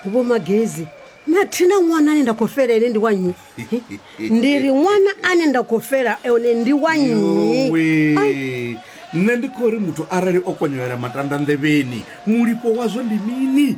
vho magezi na thina ṅwana ane nda khou fela ene ndi wa nnyi ndi ri ṅwana ane nda khou fela one ndi wa nnyi Yowe. nṋe ndi khou ri muthu arali o konyelela matanda nḓevheni mulipo wazwo ndi mini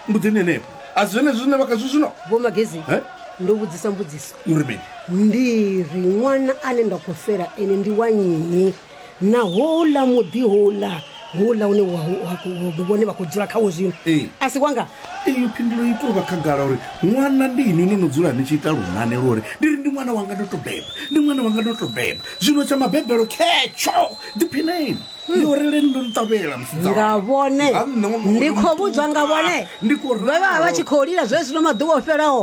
mbudzini henefho a si zwenezwi zwine vha khazwo zwino vho magezi Eh? ndo vhudzisa mbudziso uri mini ndi ri ṅwana ane nda khou fela ene ndi wa nnyi na houḽa muḓi houḽa houḽa une wa- wa- wa- vhone vha khou dzula khawo zwino Ee. a si wanga iyo phindulo i tou vha khagala uri ṅwana ndi inwi no no dzula ni tshi ita lunane lwo uri ndi ri ndi ṅwana wanga ndo to beba ndi ṅwana wanga ndo to beba zwino tsha mabebelo khetsho ḓiphineni yo releni ndo nṱavhela musidzana. nga vhone Ha nṋe ṅwana ndi wanga khou vhudzwa nga vhone ndi khou vha vha vha tshi khou lila zwezwino maḓuvha o fhelaho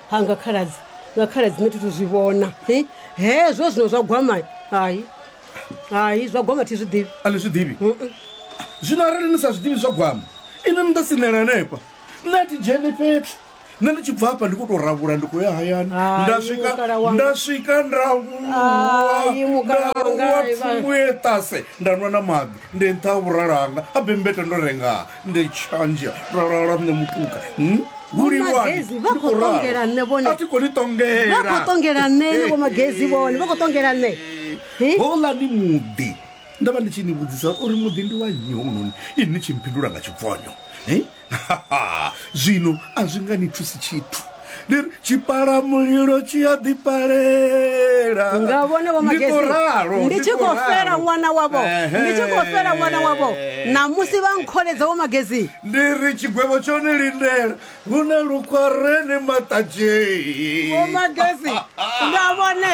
ha nga khaladzi nga khaladzi nṋe thi thu zwi vhona hi hezwo zwino zwa gwama hai hai zwa gwama thi zwi ḓivhi a ni zwi ḓivhi zwino arali ni sa zwi ḓivhi zwa gwama inwi ni ḓo sinela hanefha nṋe a thi dzheni fhethu nṋe ndi tshi bva hafha ndi khou tou ravhula ndi khou ya hayani Hai, nda swika mukala wanga. nda swika nda Hai, mukala wanga, vuwa hai, vha- thumbu ye ṱase nda nwa na maḓi ndi nṱha ha vhuralanga a bembeta ndo rengaa nde tshanje ra lala nṋe mutuka hmm? vhulilwani vha khou ṱongela nṋe vhone a thi koni ṱongela vha khou ṱongela nṋe ni vho magezi vhone vha khou ṱongela nṋe hola ni muḓi nda vha ndi tshi ni vhudzisa uri muḓi ndi wa nnyi hounoni ini ni tshi mphindula nga tshibvonyo zwino a zwi nga ni thusi tshithu ndi ri tshipala mulilo tshi a ḓipalela nga vhone vho Ndi khou ralo, magesi ndi tshi khou khou ralo. fela ṅwana wavho Ehe. ndi tshi khou fela ṅwana wavho namusi vha nkholedza vho magesi ndi ri tshigwevho tsho ni lindela hu na lukhwarene maṱadzhei vho magesi nga vhone